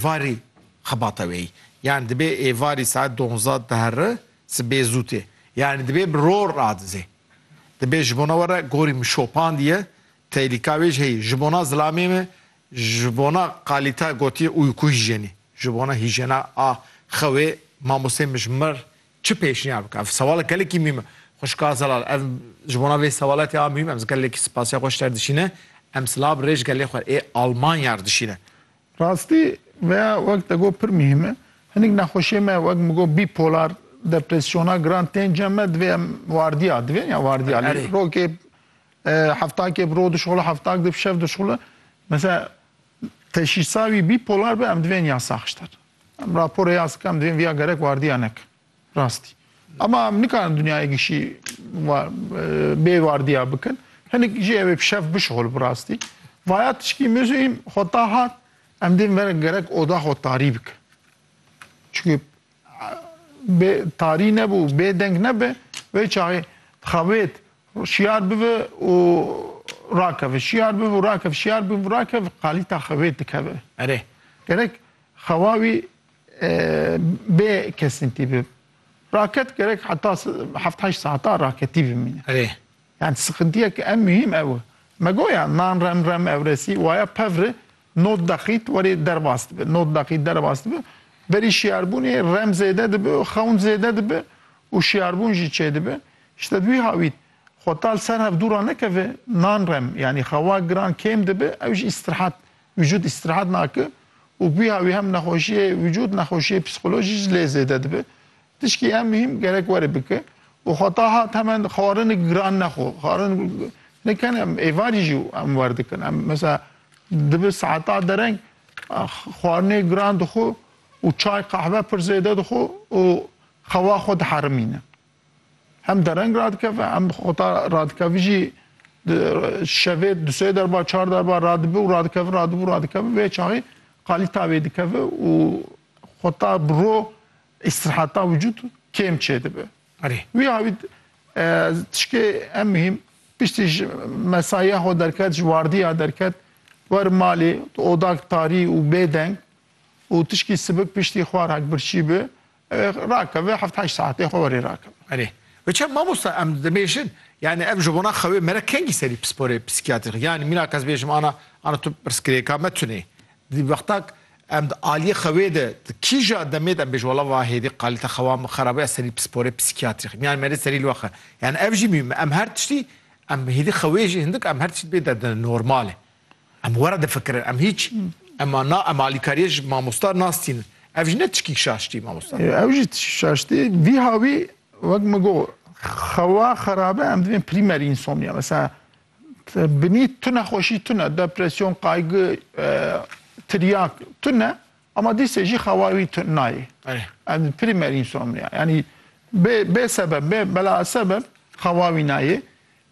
Varî xebata wê yî. Yanî dibê êvarî saet donzda di herri, sibê zû tê. Yanî dibê bi ror radizê. Dibê ji bona we re gorî min şopandiye, teylîka wê jî heyî. Ji bona zilamê me, ji bona qalîta gotiye ûyku hîjenî. Ji bona hîjena a xewê mamosteyê min ji mir çi pêşniyar bike? Ev sewalek gelekî mîm e. Xwişka Zelal, ev ji bona vê sewaletê a mîm em gelekî spasiya xwe ji te re dişîne. Em silav rê ji gelê xwe ê Almanya re dişîne. Rastî veya wek te got pir muhîm e. Hinik nexweşiyê me wek min got bîpolar, depresyona giran tên cem me divê em wardiya divê ya wardiya lê rokê heftakê bi ro dişuxile heftak di bi şev dişuxile mesela teşîsa wî bîpolar be em divên ya saxçter. Em raporê ya zika em divên viya gerek wardiya nekin. Rastî. Ama em nikarin dinyayekî şî bê wardiya bikin. Hinik jî evê pişev bişuxul bi rastî. Vaya tişkî muzîm xwe ta hat em dê verek gerek oda xwe tarî bikin. Çikî bê tarî nebû bê deng nebe vê çaxê dixabêt şiyar bibe û rakeve şiyar bibe û rakev şiyar bibe rakev qalîta xevêt dikeve erê. Gerek xewa wî bê kesintî bib. Raket gerek heta heft heşt saetan raketî bimîne. Erê. Yani sıkıntıyek en mühim ev. Megoya nan rem rem evresî waya pevri not daqît werê derbas dibi. Not daqît derbas dibi. Berî şiyarbûnê rem zêde dibi, xewn zêde dibi û şiyarbûn jî çê dibi. İşte wî hawît xwe tal ser hevdûra nekeve nan rem yanî xewa giran kêm dibi ew jî îstirahat Vîcûd îstirahat nake û gwiha wî hem nexweşiyê vîcûd nexweşiyê psîkolojî ji lê zêde dibe. Tişkî em mihîm gerek were bike û xeta hat hemen xwarinik giran nexwe. Xwarinik ne ken em êvarî jî em werdikin. Em mesela dibe saeta dereng xwarinê giran dixwe û çay qehve pir zêde dixwe û xewa xwe diherimîne. Hem dereng radikeve hem xota radikevî jî şevê du sê derba çar derba radibi û radikevi radibi û radikevi vê çaxî qalî tavê dikevi û xota bi ro îstiraheta wicûd kêm çêdibi. Erê. Wî awî tişkê em mihîm piştî ji mesaiya xwe derket ji wardiya derket wer malê tu odak tarî û bêdeng û tişkî sibik piştî xwar hek birçî bi Rakeve heft heşt saetê xwe werê rakeve. Erê. Ve çem mamosta em dibêjin yani ev ji bona xewê mere kengî serî pisporê psîkiyatrîk yani mîna kes bêjim ana ana tu pirsgirêka me tunê. Di wexta em di aliyê xewê de di kîja demê de em bêjin wala va hêdî qalîte xewa min xerab e ez serî pisporê psîkiyatrîk yani merê serî li we xe. Yani ev jî mîm e. Em her tiştî em hêdî xewê jî hindik em her tiştî dibê derdine normal e. Em were difikirin, em hiç ema na em alîkariyê ji mamosta nastînin. Ev jî ne tişkî şaştî mamosta. Ew jî tişkî şaştî vî hawî wek min got xewa xerabe em divên prîmerî insomnia mesela binî tu nexweşî tune depresyon, qaygi, tiryak tune ama dîsê jî xewa wî tu nayê. Em prîmerî insomnia yanî bê bê sebeb bê bela sebeb xewa wî nayê.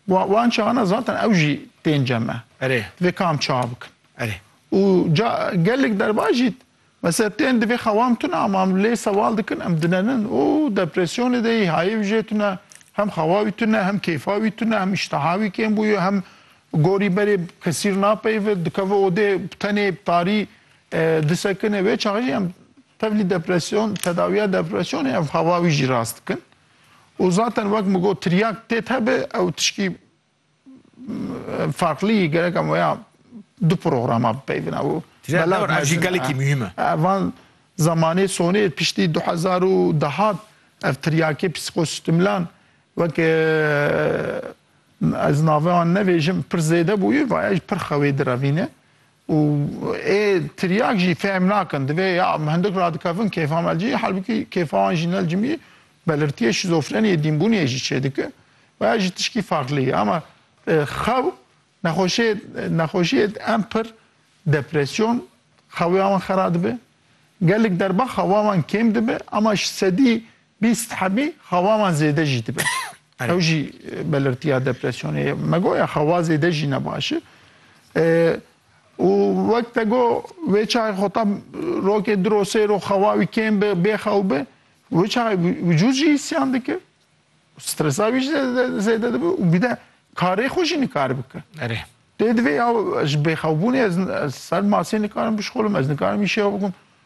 Wan çaxana zaten ew jî tên cem e. Erê. Divê kam çax bikin. Erê. Û ca gelek derva jî mesela tên divê xewam tune ama em lê sewal dikin em dinenin û depresyonê de yî hayê wî jê tune hem xewa wî tune hem kêfa wî tune hem îştiha wî kêm bûye hem gorî berê kesîr napeyive dikeve odê bi tenê bi tarî disekine wê çax jî em tevlî depresyon tedawiya depresyonê ev xewa wî jî rast dikin. Û zaten wek min got tiryak têt hebe ew tişkî farklî gereka me ya du programa bipeyvina û Tiryak ev jî gelekî muhîm e. Van zemanê sonê piştî du hezar û de hat ev tiryakê psîkosîstemlan weke ez nave wan nevêjim pir zêde bûye vaye jî pir xewê direvîne. Û ê tiryak jî fehm nakin. Divê ya em hindik radikevin kêfa me li cihê halbûkî kêfa wan jî ne li cimî belirtiyê şîzofreniyê dînbûniyê jî çêdike û ev jî tişkî farklî ye. Ama xew nexweşê nexweşiyê em pir depresyon xewiya wan xera dibe. Gelek derba xewa wan kêm dibe ama ji sedî Bîst hebî xewa wan zêde jî dibe. Ew jî belirtiya depresyonê ye. Me got ya xewa zêde jî ne baş e. Û wek te got wê çayê xweta rokê du ro sê ro xewa wî kêm be, bêxew be, wê çayê wicûd jî îsyan dike. Stresa wî jî zêde dibe û bir de karê xwe jî nikare bike. Erê. Dê divê ya ji bêxewbûnê ez ser masê nikarim bişkolim, ez nikarim îşeya bikim.